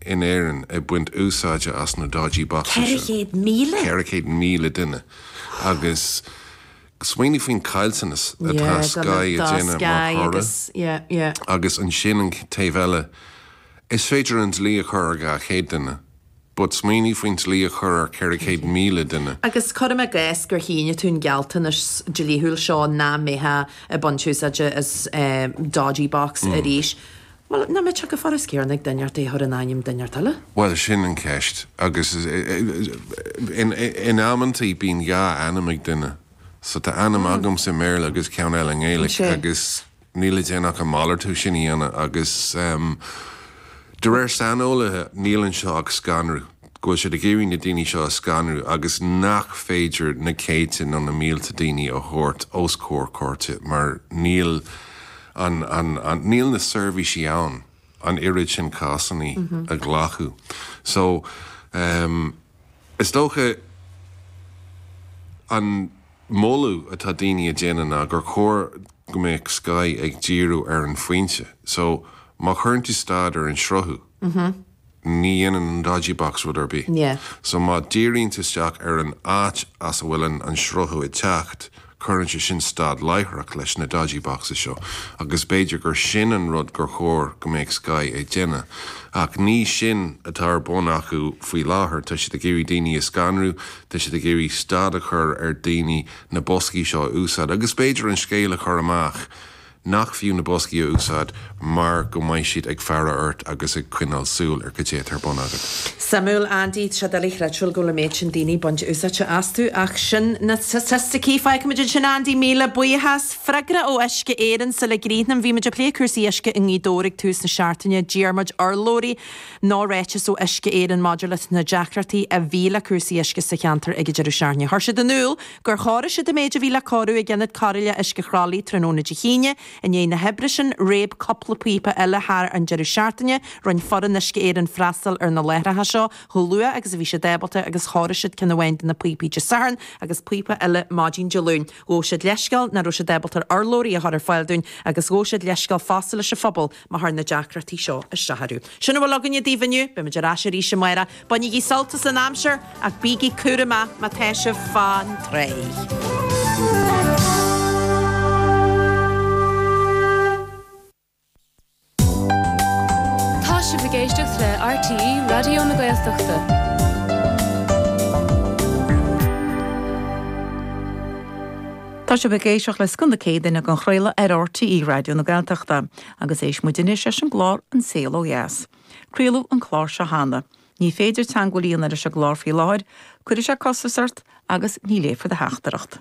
in Éirinn ag baint úsáide as na dodgy boxes sin. Ceithre chéad míle? 400,000 duine agus smaoinigh faoin caillteanas atá Sky ag déanamh mar thoradh. Yeah, do na, do Sky agus, yeah, yeah. Agus ansin an taobh eile, is féidir an dlí a chur ar 200 duine but smaoinigh faoin dlí a chur ar 400,000 duine. Agus cuirim i gcás gur shínigh tú an gealltanas dlíthiúil seo nach mbeifeá ag baint úsáide as dodgy box arís, Bhuel, nach dtig go furast Cearna ag duine ort é a chur in ainm duine inteacht eile. Bhuel, sin an cheist. Agus in amantaí bíonn dhá ainm ag duine. So tá ainm agamsa i mBéarla agus ceann eile i nGaeilic agus níl le déanamh ach an malartú sin a dhéanamh agus de réir saineolaithe níl anseo ach scanradh. go bhfuil siad ag iarraidh na daoine seo a scanrú agus nach féidir na céadta nó na mílte daoine a thabhairt os comhair cúirte mar níl an níl na seirbhísí ann an oiread sin cásanna a ghlacadh so is dócha an moladh atá daoine ag déanamh ná gur chóir go mbeadh Sky ag díriú ar an fhoinse so má chuireann tú stad ar an sruthú Ní dhéanann an dodgy box rud ar bith. So má dhíríonn tú isteach ar an áit as a bhfuil an sruthú ag teacht, cuireann sé sin stad láithreach leis na dodgy boxes seo agus b'fhéidir gur sin an rud gur chóir go mbeadh Sky ag déanamh. Ach ní sin atá ar bun acu faoi láthair. Tá siad ag iarraidh daoine a scanrú, tá siad ag iarraidh stad a chur ar daoine na boscaí seo a úsáid agus b'fhéidir an scéal a chur amach Nach fiú na boscaí a úsáid mar go mbeidh siad ag faire ort agus ag coinneáil súil ar cad é atá ar bun agat? Suimiúil, Andy. Tá sé doiligh creidbheáil go bhfuil an méid sin daoine ag baint úsáidte astu ach sin na staitisticí. Fágfaimid ansin, Andy, míle buíochas. Freagra ó Uisce Éireann, sula gcríochnaím, bhí muid ag plé cúrsaí uisce i nGaoth Dobhair ag tús na seachtaine. D'iarr muid urlabhraí nó ráiteas ó Uisce Éireann maidir leis na deacrachtaí a bhí le cúrsaí uisce sa cheantar ag an deireadh seachtaine. Chuir siad in iúl go gur chóirigh siad an méid a bhí le cóiriú ag Ionad Cóireála Uisce Chroithlí tráthnóna Dé hAoine. I ndiaidh na hoibre sin, réab cúpla píopa eile thar an deireadh seachtaine. Rinne foireann Uisce Éireann freastal ar na láithreacha seo chomh luath agus a bhí siad ábalta agus chóirigh siad ceann amháin de na píopaí Dé Sathairn agus píopa eile maidin Dé Luain. Ghabh siad leithscéal nach raibh siad ábalta urlabhraí a chur ar fáil dúinn agus ghabh siad leithscéal fosta leis an phobal Má chuir na deacrachtaí seo isteach orthu. Sin a bhfuil againn daoibh inniu. Beimid ar ais arís amárach. Bainigí sult as an aimsir ach bígí cúramach má tá sibh fán tráigh. Tá sibh ag éisteacht le RTÉ Raidió na Gaeltachta. Tá sibh ag éisteacht le Scoth na Céadaoine á chraoladh ar RTÉ Raidió na Gaeltachta agus éistfidh muid anois leis an gclár An Saol Ó Dheas. Craoladh an clár seo cheana. Ní féidir teangmháil a dhéanamh leis an gclár faoi láthair, cuirfidh sé costas ort agus ní léifear do theachtaireacht.